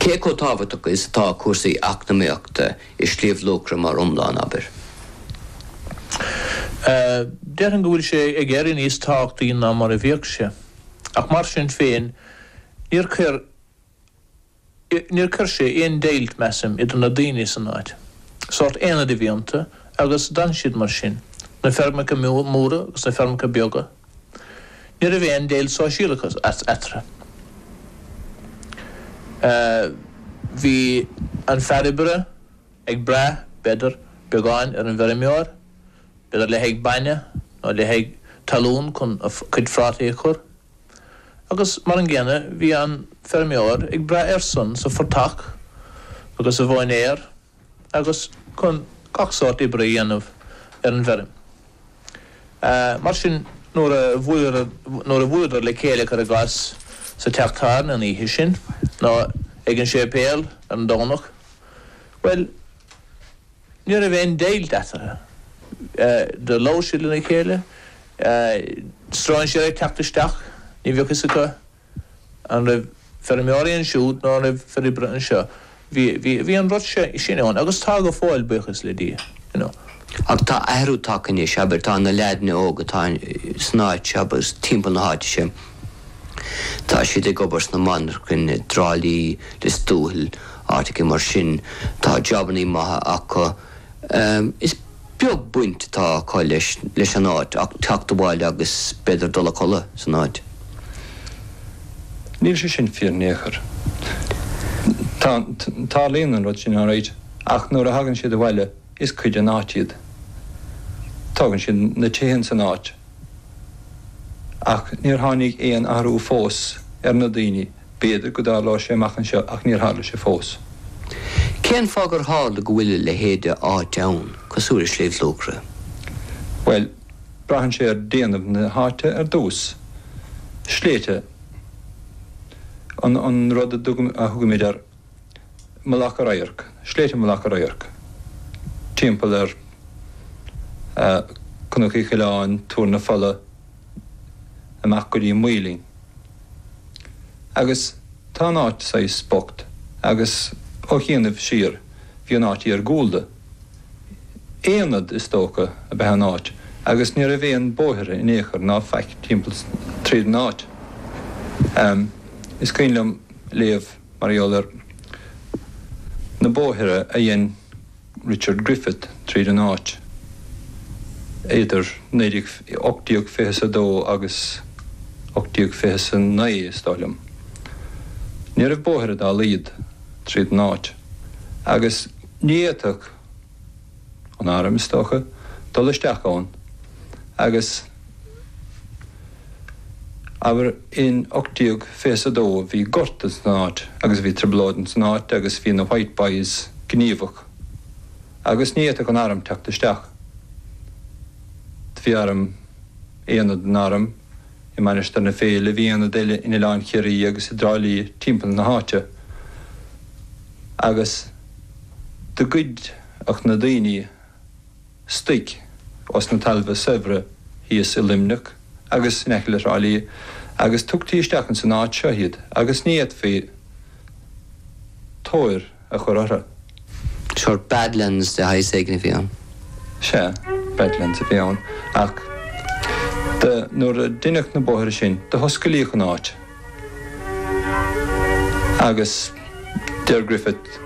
Cé chomh tábhachtach is atá cúrsaí eacnamaíochta i Sliabh Luachra mar iomlán, abair? Déarfainn go bhfuil sé ag éirí níos tábhachtaí ná mar a bhíodh sé. Ach mar sin féin, níor chuir, níor chuir sé aon deighilt, measaim, idir na daoine san áit. Sórt aonad a bhí iontu agus d'fhan siad mar sin, na feirmeacha móra agus na feirmeacha beaga. Ní raibh aon deighilt sóisialach eatarthu. Bhí an fear oibre ag brath, b'fhéidir, beagán ar an bhfeirmeoir, b'fhéidir le haghaidh bainne nó le haghaidh talún chun a chuid phrátaí a chur, agus mar an gcéanna bhí an feirmeoir ag brath airsean sa phortach agus sa mhóinéar. agus chun gach sórt oibre a dhéanamh ar an bhfeirm. Mar sin, nuair a bhuaileadar le chéile, cuir i gcás, sa teach tábhairne an oíche sin, nó ag an séipéal ar an Domhnach, bhuel, ní raibh aon deighilt eatarthu. Do labhair siad lena chéile, stróinséir ag teacht isteach, ní bheadh a fhios acu, An raibh feirmeoirí ansiúd nó an raibh fir oibre anseo, bhí, bhí, bhí an rud sin ann agus tá go fóill, buíochas le Dia, you know. Ach tá athrú tagtha anois, abair, tá na leaideanna óga atá san áit seo agus timpeall na háite seo, tá siad ag obair sna monarchain i dTrá Lí, Lios Tuathail, áiteachaí mar sin, tá jobannaí maithe acu. Is. beag baint atá acu leis leis an áit ach teacht abhaile agus b'fhéidir dul a chodladh san áit. Níl sé sin fíor in aon chor. Tá, tarlaíonn an rud sin alright ach nuair a thagann siad abhaile is cuid den áit iad. Tógann siad na tithe in san áit ach níor tháinig aon athrú fós ar na daoine B'fhéidir go dtarlóidh sé amach anseo ach níor tharla sé fós. Cén fáth gur tharla go bhfuil a leithéid de áit ann cosúil le Sliabh Luachra? Bhuel, braitheann sé ar déanamh na háite ar dtús. Sléibhte an rud a thugaimid ar Mhullach an Radhairc, sléibhte Mhullach an Radhairc, timpeall ar Cnoc Uí Choileáin, Tuar na Fola, amach go dtí an Maoilinn. Agus tá an áit saghas bocht agus ó chianaibh siar bhí an áit iargúlda. Aonad, is dócha, ab ea an áit agus ní raibh aon bóithre in aon chor ná faic timpeall tríd an áit. Is cuimhin liom léamh mar gheall ar na bóithre a dhein, Richard Griffith tríd an áit idir 1820 is a dó agus 1820 is a naoi, is dóigh liom. Ní raibh bóithre dá laghad tríd an áit agus ní fhéadfadh an airm, is dócha, dul isteach ann agus. Abair in oct déag fiche is a dó bhí gorta san áit agus bhí trioblóid ins an áit agus bhí na White Boys gníomhach agus ní fhéadfadh an arm teacht isteach. Bhí arm, aonad den arm i Mainistir na Féile, bhí aonad eile in Oileán Chiarraí agus i dTrá Lí timpeall na háite agus do ghoideadh na daoine, Stoic os na talmha saibhre thíos i Luimneach agus in aice le Thrá Lí agus tugtaí isteach ins an áit seo iad agus ní fhéadfaí tóir a chur orthu. Sure badlands de shaghas éigin a bhí ann. Sea, badlands a bhí ann ach de nuair a deineadh na bóithre sin do hosclaíodh an áit agus deir Griffith,